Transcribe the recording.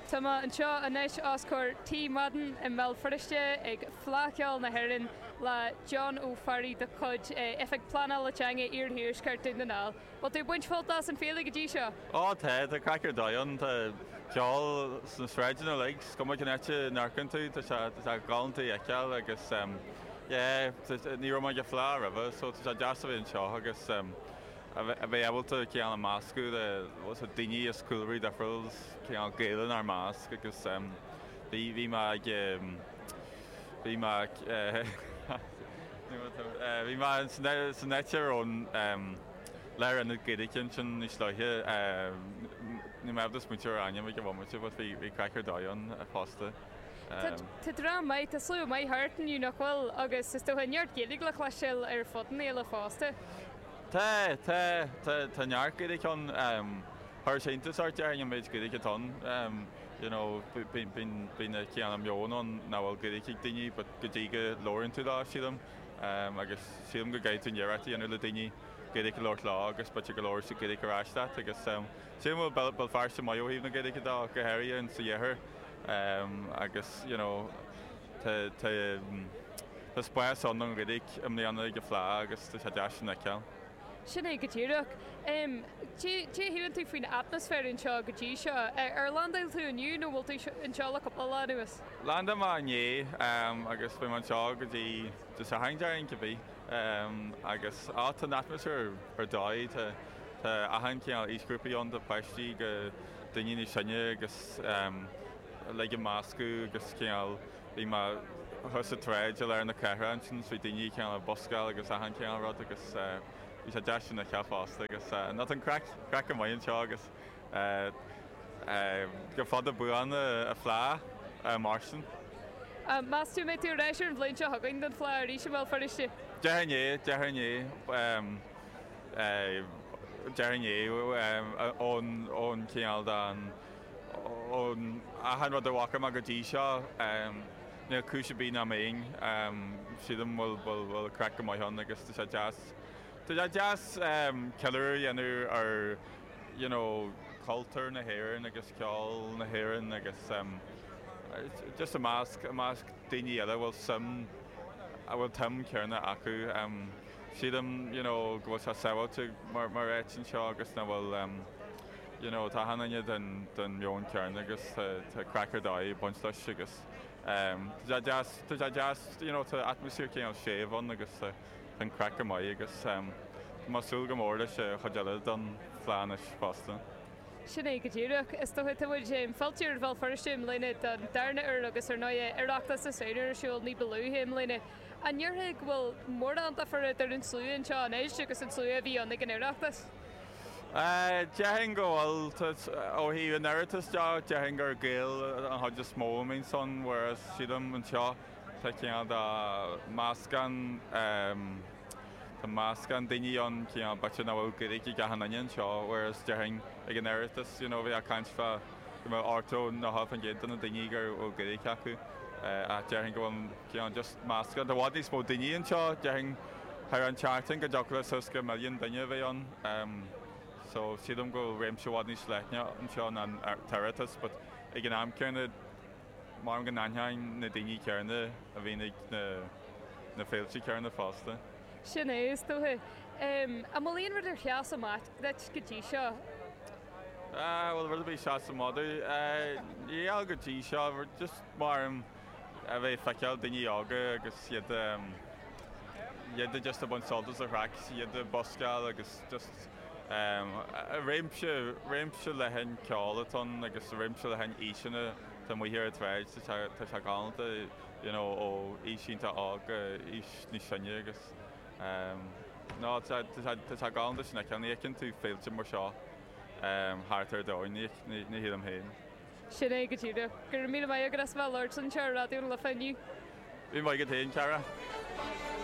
Tá mé anseo anois os comhair Tigh Mhadden i mBéal Feirste ag Fleadh Cheoil na hÉireann le John Ó Fearraigh de chuid Oifig Pleanála Teanga Iarthuaisceart Dhún na nGall. Bhfuil tú ag baint sult as an fhéile go dtí seo? Ó tá, tá craic ar dóigh ann, tá ceol sna sráideanna uilig, is cuma cén áit a n-amharcann tú tá sé, tá sé galánta a fheiceáil agus yeah, ní raibh mé ag an Fleadh roimhe so tá sé deas a bheith anseo agus. a bheith ábalta cineál ag meascadh le daoine as cúlraí difriúil, is cineál Gaeil inár measc agus bhí mé ag, bhí mé ag, bhí mé san áit, ar an lárionad Gaeilge ansin níos luaithe, níl mé ábalta smaointiú ar ainm ag an bhomaite but bhí craic ar dóigh ann fosta. Tá dream maith, tá slua maith thart inniu nach bhfuil agus is dócha neart Gaeilge le cloisteáil ar fud na féile fosta. Tá, tá, tá, tá neart Gaeilge ann. Chuirfeadh sé iontas ort déarfainn an méid Gaeilge atá ann. You know, bíonn, bíonn, bíonn an cineál meon ann nach bhfuil Gaeilge ag daoine, but go dtí go labhraíonn tú leo, sílim, agus sílim go gcaithfidh tú an iarracht a dhéanamh le daoine Gaeilge a labhairt leo agus b'fhéidir go labhróidh siad Gaeilge ar ais leat. Agus sílim go bhfuil Béal, Béal Feirste maith ó thaobh na Gaeilge de, go háirithe ins an iarthar. Agus, you know. Tá spás ann don Ghaeilge i mbliana ag an Fhleadh agus tá sé deas sin a fheiceáil. Sin é go díreach. Caidé a shíleann tú faoin atmaisféar anseo go dtí seo? Ar landáil tú inniu nó bhfuil tú anseo le cúpla lá anuas? Landáil mise inné agus beidh mé anseo go dtí Dé Sathairn, déarfainn, cibé. Agus á, tá an atmaisféar ar dóigh. Tá achan chineál aoisghrúpaí ann, ó pháistí go daoine níos sine agus. uilig ag meascadh agus cineál bhí mé thuas sa tsráid i lár na cathrach ansin bhí daoine cineál ag buscáil agus achan cineál rud agus bhí sé deas sin a fheiceáil fosta agus an an craic craic a maith anseo agus go fada buan an Fhleadh, a Mháirtín. Meas tú an mbeidh tú ar ais ar an bhliain seo chugainn don Fhleadh arís i mBéal Feirste? Déarfainn é, déarfainn é, déarfainn é ón cineál den. Ón achan rud a bhfaca mé go dtí seo, níl cúis ar bith nach mbeinn. Sílim go bhfuil craic go maith ann agus tá sé deas, tá sé deas ceiliúradh a dhéanamh ar you know cultúr na hÉireann agus ceol na hÉireann agus just i measc, i measc daoine eile a bhfuil suim, a bhfuil an tsuim chéanna acu. Sílim you know go bhfuil sé sábháilte mar áit anseo agus nach bhfuil em. you know tá achan duine den den meon céanna agus tá tá craic ar dóigh ag baint leis agus em tá sé deas tá sé deas you know tá atmaisféar cineál séimh ann agus tá tá an craic go maith agus em tá mé ag súil go mór leis an chuid eile den fhleadh anois fosta. Sin é go díreach. Is dócha, tá muid em fillte ar Bhéal Feirste i mbliana don darna uair agus ar ndóigh eh Oireachtas na Samhna ar siúl ní ba luaithe i mbliana. An ndéarfá, bhfuil mórán difear eadar an slua anseo anois agus an slua a bhí ann ag an Oireachtas? Déarfainn go bhfuil. Ó thaobh an Oireachtas de, déarfainn gur Gaeil an chuid is mó a bíonn ansin, whereas sílim anseo tá cineál de mheascán, tá meascán daoine ann, cineál b'fhéidir nach bhfuil Gaeilge ag achan duine anseo whereas déarfainn ag an Oireachtas you know bheifeá ag caint fá go mbeadh 80, 90% de na daoine go bhfuil Gaeilge acu ach déarfainn go bhfuil. Just meascán tá i bhfad níos mó daoine anseo. Déarfainn thar an tseachtain go dtiocfadh leis suas go milliún duine a bheith ann. So sílim go bhfuil réimse i bhfad níos leithne anseo ná an tOireachtas but ag an am céanna mharaim go n-aithneoinn na daoine céanna a bhíonn ag na na féilte céanna fosta. Sin é, is dóiche. An bhfuil aon rud ar sheas amach duit go dtí seo? An bhfuil rud ar bith a sheas amach dom? Níl go dtí seo, just mharaim. a bheith ag feiceáil daoine óga agus iad iad just ag baint sult as an chraic, iad ag buskáil agus just réimse, réimse leathan ceoil atá ann agus réimse leathan aoiseanna, tá amuigh ar an tsráid, tá sé galánta you know ó aois iontach óg go aois níos sine agus no tá sé galánta sin a fheiceáil, ní fheiceann tú féilte mar seo thart ar domhain, ní shílim féin. Sin é go díreach. Go raibh míle maith agat as a bheith ag labhairt linn anseo ar Raidió na Life inniu. Míle maith agat féin, a chara.